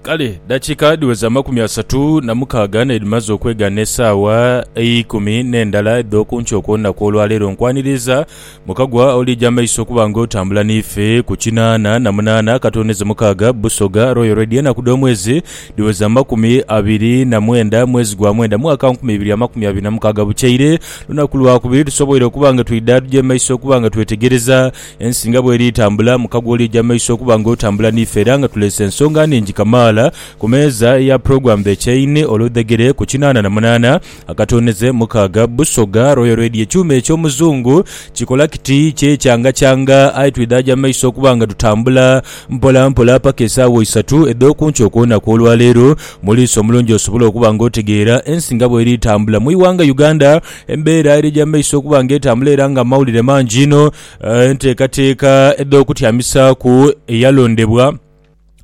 Kale dakiika dhiweza amakumi asatu na mukaaga n'edhimaze okwega n'esaawa eikumi n'endala edh'oku nkyo okw'olunaku olwaleero, nkwaniriza mukagwa oliija amaiso okuba nga otambula n'ife ku kinaana na munaana akatooneze mukaaga Busoga Royal Radio. Enaku dh'omwezi dhiweza amakumi abiri na mwenda mwezi gwa mwenda mwaka nkumi ibiri amakumi abiri na mukaaga. Bukyaire lunaku lwakubiri tusoboire okuba nga twidha tuja mu maiso okuba nga twetegereza Ensi nga bw'eri etambula mu kagooli eja maiso okuba nga otambula n'ife era nga tuleese ensonga nhingi kamaala ku meeza ya Program The Chain oludhegere ku kinaana na munaana akatoonheze mukaaga Busoga Royal Radio Ekyuma eky'Omuzungu kikola kiti kyekyangakyanga aye twidhaaja mu maiso okuba nga tutambula mpola mpola paka esaawa isatu edh'oku nkya okwona kw'olwaleero Muliisa omulungi osobola okuba nga otegeera ensi nga bw'eri etambula mu ighanga Uganda Embeera eri egy'amaiso okuba nga etambula era nga amawulire mangi inho, enteekateeka edh'okutyamisaaku eyalondebwa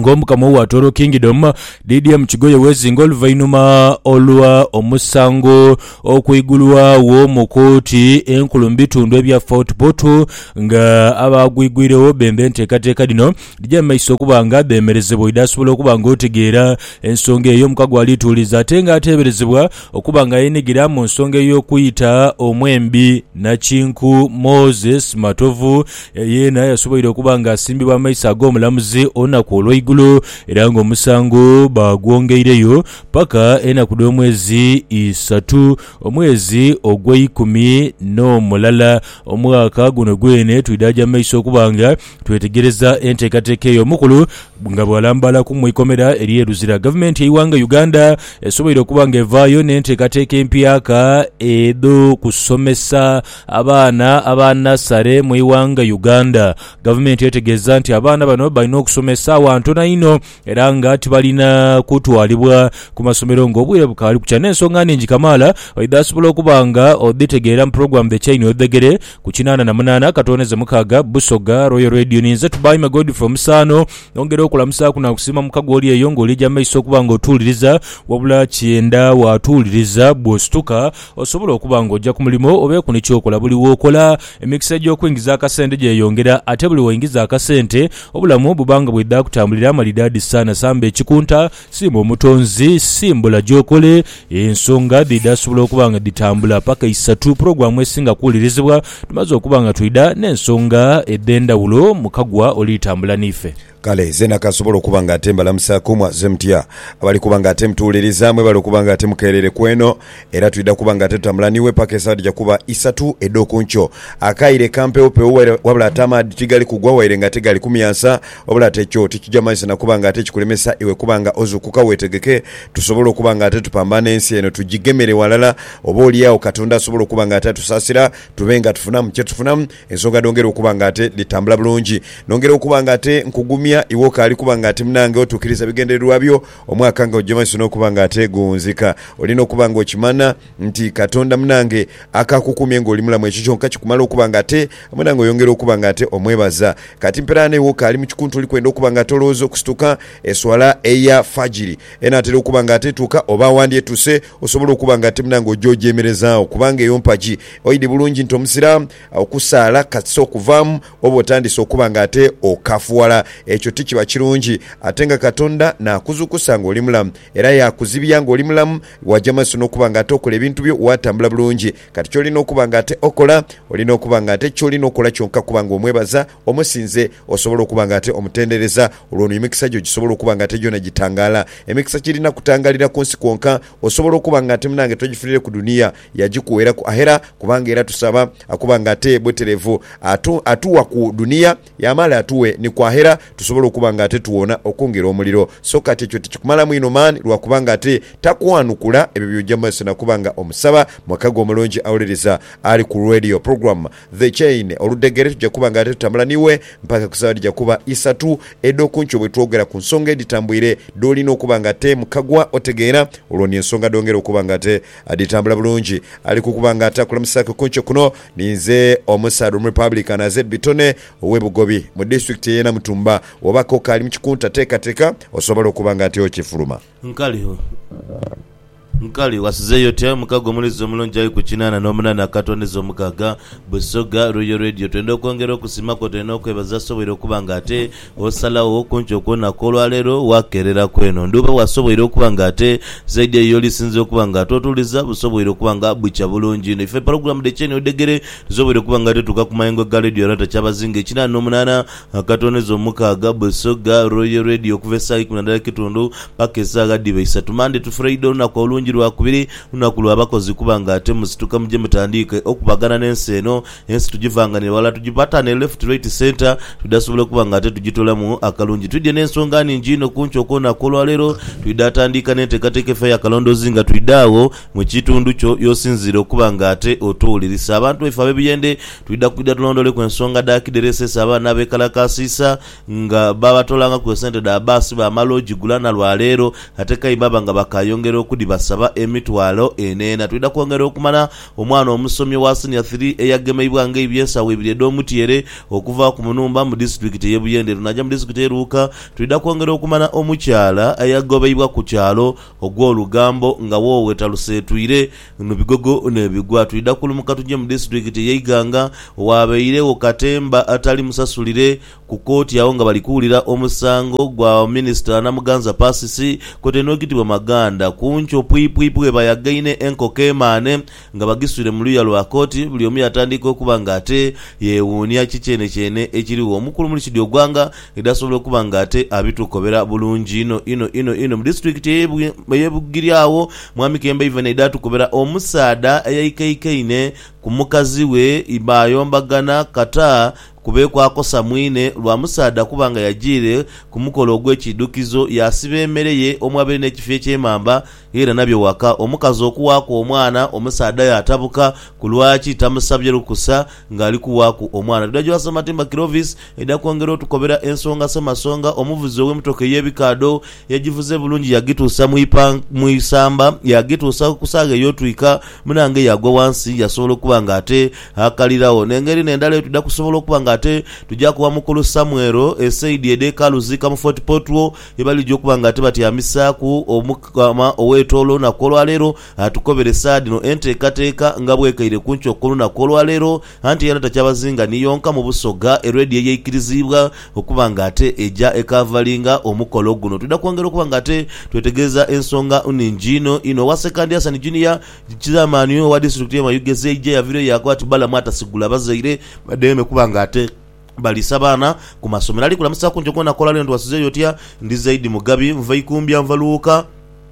ng'Omukama owa Toro Kingdom, DDM Kigoye wezinga oluvainhuma olwa omusango okwigulwagho mu kooti enkulu mu bitundu ebya Fort Portal nga abaagwigwiregho bemba enteekateeka dhino dhije mu maiso okuba nga dhemerezebwa oidhi asobola okuba nga otegeera ensonga eyo. Omukago alituuliza ate nga ateeberezebwa Okuba nga yeenhigira mu nsonga ey'okuyita omwembi, nakinku Moses Matovu yeena yasoboire okuba nga asimbibwa amaiso ag'omulamuzi olunaku olweigulo era nga omusango baagwongeireyo paka enaku dh'omwezi isatu omwezi ogweikumi n'omulala omwaka guno gweene twidhaagya mumaiso okuba nga Twetegereza enteekateeka eyo omukulu nga bw'alambaala ku mu ikomera ery'e Luzira. Gavumenti y'eighanga Uganda esoboire okuba nga evaayo n'enteekateeka empyaka edh'okusomesa abaana aba nasale mu ighanga Uganda. Gavumenti etegeeza nti abaana bano balina okusomesaagho ntono inho era nga tibalina kutwalibwa ku masomero ng'obwire bukaali kukya. N'ensonga nhingi kamaala oidha asobola okuba nga odhitegeera mu pulogulaamu The Chain Odhegere ku kinaana na munaana akatooneze mukaaga, Busoga Royal Radio. Ni nze Tubaime Godfrey Omusaano. Nongera okulamusaaku naakusiima mukago oli eyo ng'oliija mu maiso okuba ng'otuwuliriza. Wabula kyenda waatuwuliriza, bw'osituka osobole okuba ng'oja ku mulimo oba eku ni ky'okola. Buli w'okola, emikisa egy'okwingiza akasente gyeyongera ate buli w'oingiza akasente, Obulamu buba nga bwidha kutambulira amalidaadi saana samba ekikunta, siima Omutonzi, simbula gy'okole, ensonga dhidha sobola okuba nga dhitambula paka isatu pulogulaamu esinga kuwulirizibwa tumaze okuba nga twidha n'ensonga edh'endhawulo mu Kagwa oli tambula n'ife. Kale zeena kasobola okuba nga ate mbalamusaaku, mwaze mutya? Abali kuba nga ate mutuwuliriza mwebale okuba nga ate mukeerere kweno Era twidha kuba nga tetutambula n'iwe paka esaawa dhija kuba isatu edh'oku nkyo. Akaire kampeewupeewu waire, wabula ate amaadhi tigali kugwa waire nga ate gali kumyansa. Wabula ate ekyo tikija manyisa na kuba nga ate kikulemesa iwe kuba nga ozuukuka weetegeke tusobole okuba nga ate tupambana ensi eno tugigemere ghalala. Oba oli agho Katonda asobole okuba nga ate atusaasira tube nga tufunamu kye tufunamu ensonga dhongere okuba nga ate dhitambula bulungi. Nongera okuba nga ate nkugumya iwe okaali kuba nga ati munange otuukiriza ebigendererwa byo. Omwaka nga gugya mu maiso n'okuba nga ateegonzeka, olina okuba nga okimana nti Katonda munange akakukumye ng'oli mulamu. Ekyo kyonka kikumala okuba nga ate munange oyongera okuba nga ate omwebaza. Kati mperaano iwe okaali mu kikunta oli kwenda okuba nga ate olowooza okusituka eswala eya Fajiri enaatera okuba nga ate etuuka oba wandyetuse osobola okuba nga ate munange ogya ogyemerezaagho kubanga eyo mpagi. Oidhi bulungi nti Omusiraamu. Agho kusaala katuse okuvaamu, oba otandise okuba nga ate okafuwala. Ekyo ti kiba kirungi. Ate nga Katonda naakuzuukusa nga oli mulamu, era yaakuzibya nga oli mulamu, waja maiso n'okuba nga ate okola ebintu byo, waatambula bulungi. Kati ky'olina okuba nga ate okola, olina okuba nga ate ky'olina okola kyonka kuba nga omwebaza, omusinze, osobole okuba nga ate omutendereza. Olwo ni emikisa gyo gisobola okuba nga ate gyona gitangaala. Emikisa kirina kutangaalira ku nsi kwonka. Osobola okuba nga ate munange togifunire ku dunia. Yagikuweraku aghera kubanga era tusaba akuba nga ate bweterevu. Atu, atuwa ku dunia yamala atuwe ni ku aghera tusobole okuba nga ate tuwona okwongera omuliro. So kati ekyo tikikumalamu inho maani lwa kuba nga ate takwanukula ebyo by'oja mu maiso na kuba nga omusaba? Mweka gwe omulungi awuliriza ali ku radio program The Chain oludhegere, tuja kuba nga ate tutambula n'iwe mpaka ku saawa edhija kuba isatu edh'oku nkyo bwe twogera ku nsonga edhitambwire dh'olina okuba nga ate mukagwa otegeera olwo ni ensonga dh'ongera okuba nga ate Adhitambula bulungi ali kukuba nga atakulamusaaku ku nkyo kuno. Ninze omusaadha Omurepublican aze e Bitone ow'e Bugobi mu disitulikiti ey'e Namutumba. Wooba k'okaali mu kikunta teekateeka osobole okuba nga ati okifuluma. Nkaligho. Nkali, wasizeeyo otya? Omukago omuliiza omulungi ali ku kinaana n'omunaana akatondeza omukaaga. Busoga, Royal Radio, twenda okwongera okusiima kw'otulina okwebaza asoboire okuba nga ate. Osalagho okunkyo kwona kw'olwa leero waakeerera ku eno ndhuba wasoboire okuba nga ate zaidi eyo y'olisinze okuba nga twotuuliza busoboire okuba nga bukya bulungi inho. Ife pulogulaamu dhe Kyeni Odhegere dhisoboire okuba nga dhituuka ku mayengo ga leediyo Rata Kyabazinga ekinaana n'omunaana akatooneza omukaaga, Busoga Royal Radio okuva esaawa ikumi na ndala ekitundu paka esaawa dhiba isatu. Mmande tu Furaida olunaku olungi Lwakubiri lunaku lwa bakozi kuba nga ate musituka muje mutandiike okubagana n'ensi eno Ensi tujivanganire ghalala tujipatanire left right centre twidha sobola okuba nga ate tujitolamu akalungi. Twidhie n'ensonga nhingi inho ku nkyo kwona kw'olwaleero. Twidha atandiika n'enteekateeka efa eya kalondoozi nga twidha agho mu kitundu kyo y'osinziire okuba nga ate otuwulirisa. Abantu baife ab'ebiyendhe twidha kwidha tulondooleku ensonga dha kidhereseesa abaana abeekalakaasiisa nga baabatolangaku esente dha baasi baamala ogigula na lwa leero ate k'aidha baaba nga bakaayongera okudhibasaba emitwalo eneena. Twidha kwongera okumala Omwana omusomi owa Senior Three eyagemeibwa ng'aibye ensawo ibiri edh'omutyeere okuva ku Munumba mu disitulikiti eye Buyende naja mu disitulikiti eye Luuka Twidha kwongera okumanya omukyala eyagobeibwa ku kyalo Ogwolugambo nga woowe taluseetwire nu bigogo nebigwa Twidha kulumuka tuje mu disitulikiti eye Iganga owabeiregho katemba atali musasulire Ku kooti agho nga bali kuwulira omusango gwa minisita Namuganza Persis kwotaire n'ogitibwa Maganda, Kuncho, Pwipwipi bwebayagaine enkoko emaane nga bagiswire mu luya lwa kooti buli omu yatandiika okuba nga ate yewuunia ki kyenekyeene ekirigho. Omukulu Murshid Ogwanga idi asobola okuba nga ate abitukobera bulungi inho inho inho inho. Mu disitulikiti eye Bugiri agho Mwami Kemba Ivan aidha atukobera omusaadha eyaikaikaine ku mukazi we baayombagana kata Kubeeku akosa mwine lwa musaadha kuba nga yajiire ku mukolo ogw'Ekiidhukizo yaasiba emere ye omwabere n'ekifi eky'emamba yaira nabyo waka. Omukazi okuwaaku omwana, omusaadha aye atabuka ku lwaki tamusabye lukusa ng'ali kuwaaku omwana. Tudha gy'owa Ssematimba Clovis aidha kwongera otukobera ensonga Ssemasonga, omuvuzi ow'emotoka ey'ebikaadho, Yagivuze bulungi yagituusa mu ipan, mu isamba, yagituusa ku saagha ey'otwika. Munange yaagwa wansi yasobola okuba nga ate akaliragho. N'engeri n'endala eyo twidha kusobola okuba nga ate tugyaku wa Mukulu Samuel esaidi edh'ekaalu zi Kamufooti Potwo ye balija okuba nga ate batyamisaaku. Omukama ow'etoolo olunaku olwa leero atukoberesa dhino enteekateeka nga bw'ekaire ku nkyo ku lunaku olwa leero. Anti era takyabazinga ni yonka mu Busoga eredi eyeikiriziibwa okuba nga ate eja ekaavalinga omukolo guno. Twidha kwongera okuba nga ate twetegereza ensonga nhingi inho inho. Owa Sekandi Hassan Junior, Chairman owa Disitulikiti ye Mayugeezi eija yaviireyo yaakoba ati Balamu atasigula bazaire badheeme kuba nga ate baliisa baana ku masomero. Ali kulamusa kungi gwona akola leno twasizeeyo otya? Ndi Zaidi Mugabi, nva Ikumbya, nva Luwuka.